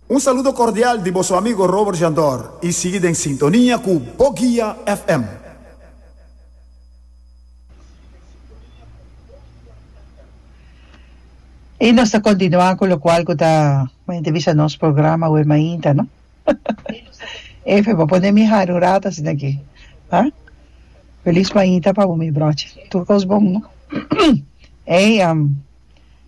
Un saludo cordial di boso amigo Robert Jandor y sigui den sintonia cu Bo Guia FM. Y nos ta continua cu locual cu ta mente bisa nos programa awe mainta no Efe bo pone mi hari un rato asinaki ha Feliz mainta pa bo mi brochi tur cos bon no Ey am.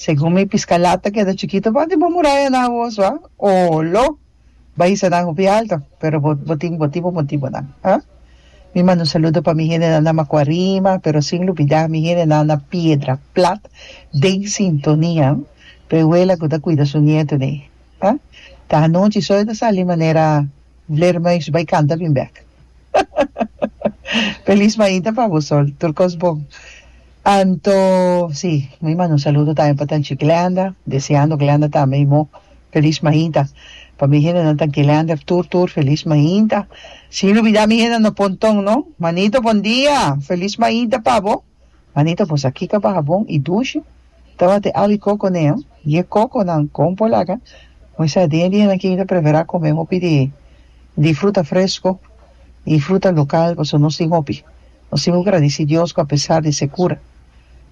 Segun mi pisca lata keda chikito pa di bo murayanan awos wa o lo bay hisa nan hopi alto pero bo bo tin bo tipo motibonan ha mi manda un saludo pa mi hendenan na macuarima pero sin lubida mi hendenan na piedra plat den sintonia pe awela cu ta cuida su nieto dey ha ta anochi so yo ta sali manera vleermuis bay canta bin bek hahaha feliz maita pa bo sol tur cos bon. Anto si mi a manda un saludo tambe pa Tanchi Glenda deseando Glenda tambe i mou feliz mainta pa mi hendenan ta Glender tur tur feliz mainta sin lubida mi hende no pon tong no manito bon dia feliz mainta pa bo manito bosa kika baha bon i dushi tabata awi koko ne ho i e kokonan kon por laga mi sa den di hendenan kin ta prefera kome hopi di di fruta fresco i fruta local pasobra nos tin hopi. Nos tin ku gradisí Dios ku apesar di sekura,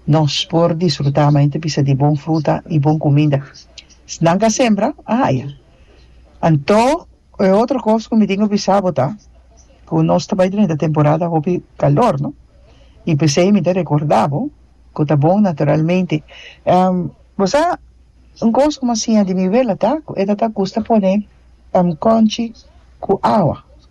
nos por disfrutá mante bisa di bon fruta i bon kuminda. Esnan ka sembra, a haya. Anto e otro kos ku mi tin ku bisa bo ta ku nos ta bai drenta e temporada hopi kalor, no? I p'esei mi ta rekordá bo ku ta bon naturalmente. Bo sa un kos ku mi a siña di mi wela ta ku e ta ta gusta pone kònchi ku awa.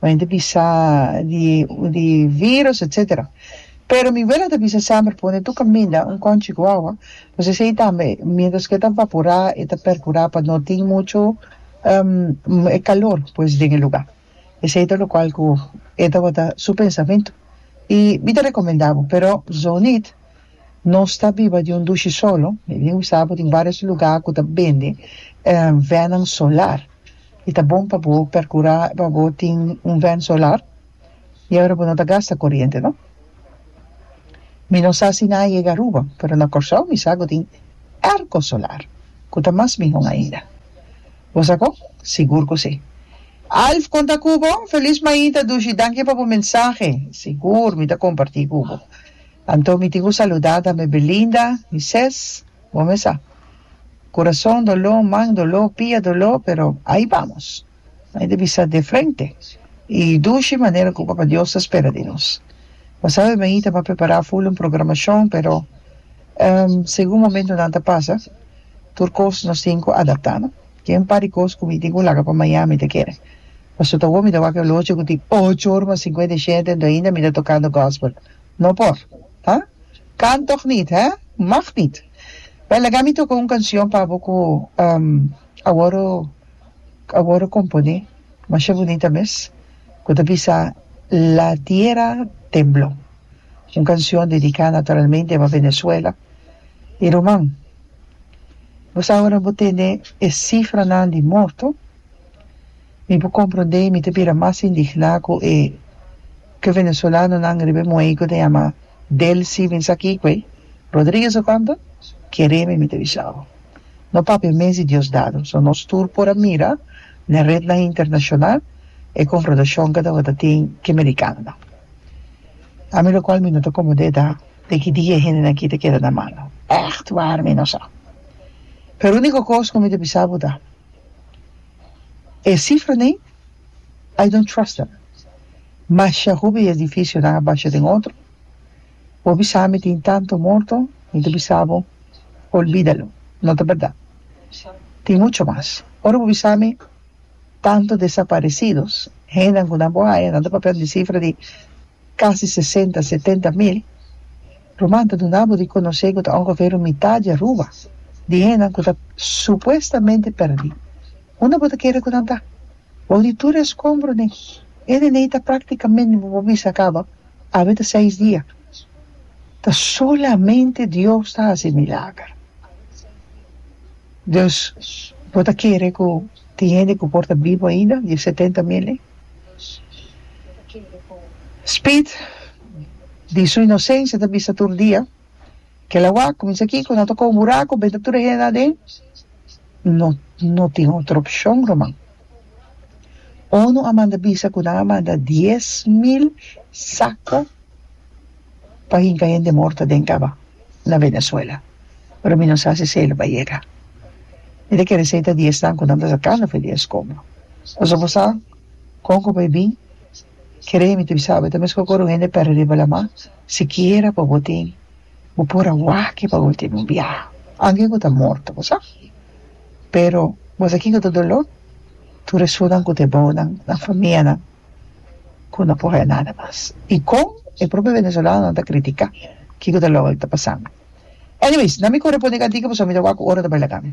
pa hende bisa di di virus etc. Pero mi wela ta bisa semper pone tu caminda un conchi guagua pues esey tambe mientras que e ta vapora e ta percura pa no tin mucho e calor pues den e lugar esey ta locual cu e tabata su pensamiento y mi ta recomenda bo pero Zoneet no sta biba di un dushi solo mi tin bisa bo tin varios lugar cu ta bende venan solar. y ta bon pa bo percura pa bo tin un vent solar y awe bo no ta gasta coriente no mi no sa si nan a yega Aruba pero na Corsou mi sa cu tin erco solar cu ta mas mihon ainda bo sa con sigur cu si. Alf con ta cu bo? Feliz maita Dushi danki pa bo mensahe sigur mi ta comparti cu bo anto mi tin cu saludada mi Belinda mi ses Bo mes sa. Kurason doló, man doló, pia doló, pero ai bamos. Ai ta bisa de frente i dushi manera ku Papa Dios ta spera di nos. Bo sabe mi ta por prepará ful un programashon, pero segun momentunan ta pasa, tur kos nos tin ku adaptá no. Ke un par di kos ku mi tin ku laga pa maña mi ta kere. Pasobra ta wak mi ta wak e lochi ku tin ocho ora mas sinkuenta i shete, mi ta tokando gòspel. No por, ha? Kan tòg nit, hè? Mag nit. Bèn, laga mi toka un kanshon pa bo ku awòru awòru komponé masha bunita mes, ku ta bisa La tierra tembló. Un kanshon dediká naturalmente pa Venezuela i ruman. Bo sa awor a bo tende e sifranan di morto. Mi por comprende mi ta bira mas indigná cu e ke venezolanonan riba e muhei cu ta yama Delcy bin sa kiko ei Rodriguez ta tanta? Kereme mi ta bisa bo. No papia mes di Diosdado so nos tur por a mira n'e rednan internacional e confrontacion ke tabata tin ke mericanonan. Ami locual mi no ta comodé ta den ki dia e hendenan aki ta keda na malo. Echt waar mi no sa. Pero unico cos cu mi ta bisa bo ta E cifra nei I don't trust them. Masha hopi edificio nan a basha den otro. Hopi sa mi tin tanto morto, mi ta bisa bo olbidalo, no ta berdad. Tin mucho mas. Ora bo bisa mi tanto desaparecidos, hendenan cu nan bo haya, nan ta papia di cifra di. casi sesenta, setenta mil ruman ta duna bo di conoce cu ta ongeveer un mitad di Aruba di hendenan cu ta supuestamente perdi. Unda bo ta kere cu nan ta? Bou di tur e escombro den e neney ta practicamente bo por bisa caba awe ta seis dia. Ta solamente Dios ta haci milager. Dus bo ta kere cu tin hende cu por ta bibo ainda di e setenta mil ey? Speed di su inosencia ta bisa tur dia kel awa cuminsa aki cu no toca un buraco benta tur e hende aden no no tin otro opcion ruman onu a manda bisa cu nan a manda dies mil saco pa hinca hende morto den caba na Venezuela, pero mi no sa si Salo ba yega. Mi ta kere sei ta di esnan cu nan ta sacando fe di e escombro. Pasobra bo sa con cu bo a bin? Kere mi ta bisabe ta mesco cu ora un hende perde riba lama, sikiera pa bo tin, bo por a waki pa ultimo biaha, anke cu ta morto, bo sa. Pero bo sa kico ta dolor? Tur e sunan cu ta e bounan, nan famianan. ku no por haña nada mas i kon e propio venezolanonan ta kritika kiko ta loke lo ta pasando. Anyways, nan mi ku reponde kantiki pasobra mi ta wak ku ora ta bai laga mi.